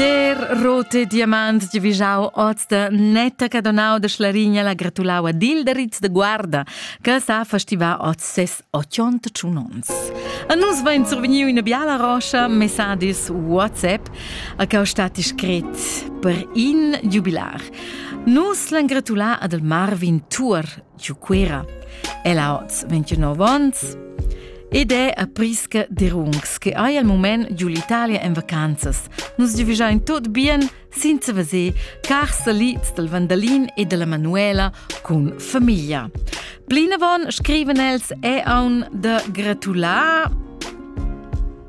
Der rote diamant di vijau oz da netta che donau de Schlarigna la gratulau ad Ilderitz de Guarda, che sa festiva oz ses 81 ons. A nus vain survegniu una biala roscia messages WhatsApp a che ho stat scrit per in jubilar. Nus l'han gratulà ad el Marvin Tour, giu Cuira. El ha oz 29 ons ed è a Prisca de Rungs, che hai al moment giu l'Italia en vacanzas. Nus giuvigiain tot bien senza veser car salids del Vandalin e della Manuela cun famiglia. Plinavon scriven els è aun da gratular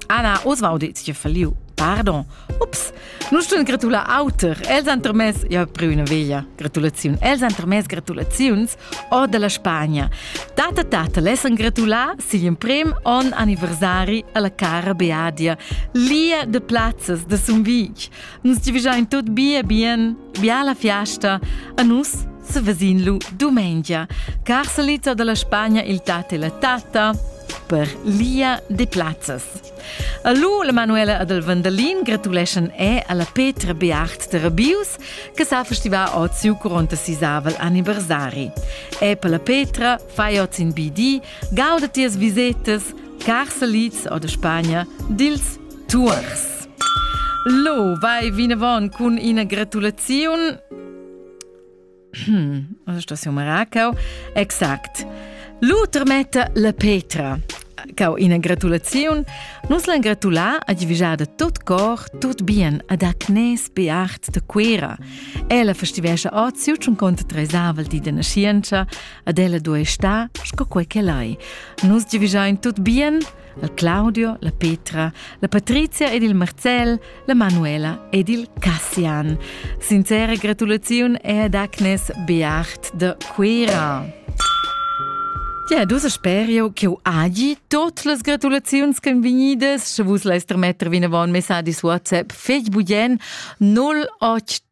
Anna Oswald, jetzt falliu. Pardon. Ups, Nus stun gratular auter. Els han termess, ja preu üna veglia gratulaziun. Els han termess gratulaziuns or della Spagna. Tata tata lessan gratular sin in prim on anniversari alla cara Beadia, lia de plazzas de Sumvig. Nus divigiain tot bia bien, biala fiasta, a nus se vesin lu domengia. Car salita dalla Spagna il tat e la tata per lia de plazzas. A lu la Manuela ad el Vandalin gratuleschan e alla Petra Beart de Rabius che sa festivar od siu 46avel anniversari. E per la Petra fai oz in BD, gauda tias visetas, carsalits o de Spagna, dils tuors. Lo, vai vinavon cun ina gratulaziun Hm, sto si umara cau? Exact. L'uter metta la Petra. Cau ina gratulaziun. Nus l'han gratulà a divigiada tot cor, tot bien ad Agnes Beart de Quera. Ella festivescia ot siu tschun conta tresavel di de nascienza, ad ella duei sta, sco quei che lai. Nus divigiain tot bien, la Claudio, la Petra, la Patrizia ed il Marcel, la Manuela ed il Cassian. Sincera gratulaziun è ad Agnes Beacht de Cuira. Ja, dus spero che agi tot las gratulaziuns che venides, sche vus leis trametter vinavon messagis WhatsApp Facebook 08